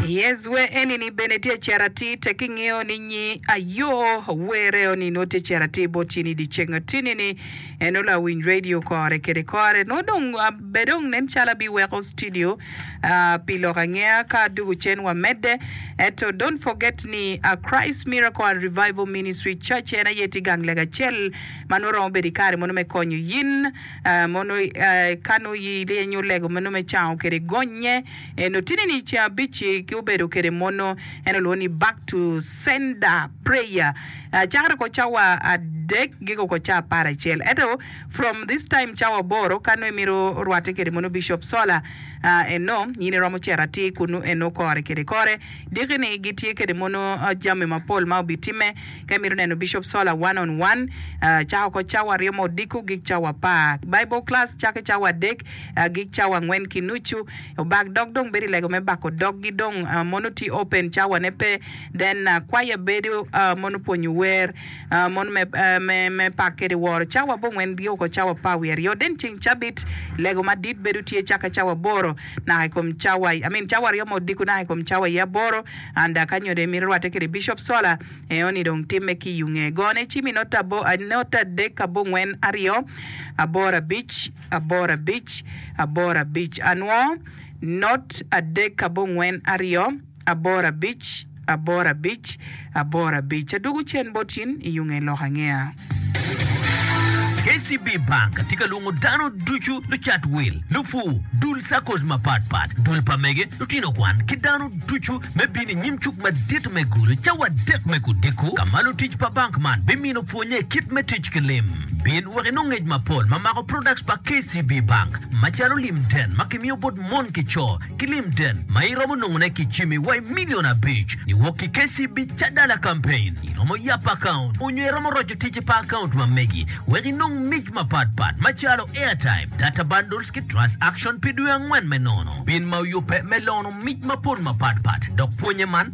I Ezwe enini bene tye cito atir tek ki ngeyo ni nyi ayo were oni nongo tye cito atir bot cini idi ceng atini ni en onongo awiny radio kore kede kore nongo dong be dong nen calo abi weko studio aah pi lok angeya ka dugu cen wa mede eto don't forget ni a Christ Miracle and Revival Ministry Church en aye tye gang lega acel ma nongo romo bedo ikare mono me konyo yin aah mono aah ka nongo iyenyo lego mono me cango kede gonye. En otini ni ceng abic-ci ki obedo kede mono en olwongo ni back to sender prayer cakere ko cawa adek giko ko ca apar acel ento from this time cawa aboro ka nongo imito rwate kede mono Bishop Sola eno in iromo cito atir kunu eno kore kede kore diki ni gitye kede mono jami mapol ma obi time ka imito neno Bishop Sola one on one cako ko cawa aryo ma odiko gik cawa apar Bible class cake cawa adek Agik cawa angwen ki nucu obak dog dong bedo ilego me bako dog gi dong mono tye open cawa ne pe then kwaya bedo mono pwonyo wer mono me me me pak kede woro cawa abongwen bye oko cawa par wiye aryo then ceng cabit lego madit bedo tye cake cawa aboro naka ikom cawa I mean cawa aryo ma odiko naka ikom cawa iye aboro and ka nyodo imito rwate kede bishop sola eo ni dong time ki iyunge gone icimi note adek abongwen aryo aboro abic. aboro abic, aboro abic anwo, not adek abongwen aryo, aboro abic, aboro abic, aboro abic. Adwogo cen bot in iyo nge lok angeya. KCB Bank tye ka lwongo dano ducu, lucat wil, lupur, dul SACCOs mapat pat, dul pa mege, lutino kwan, ki dano ducu me bino i nyim cuk madit me gulu cawa adek me kudiko, ka ma lutic pa bank man bimino Pwonnye kit me tic ki lim bin wek inong ngec mapol ma mako products pa KCB Bank macalo lim den ma kimiyo bot mon ki co ki lim den ma iromo nongone ki jimi wa i million abic niwok ki KCB Cadala Campaign. Iromo yap account onyo iromo roco ticci pa account ma megi wek inong mic mapat pat macalo airtime, data bundles ki trust action pi dwe angwen me nono bin ma oyubbe me lono mic mapol mapat pat dok pwonnye man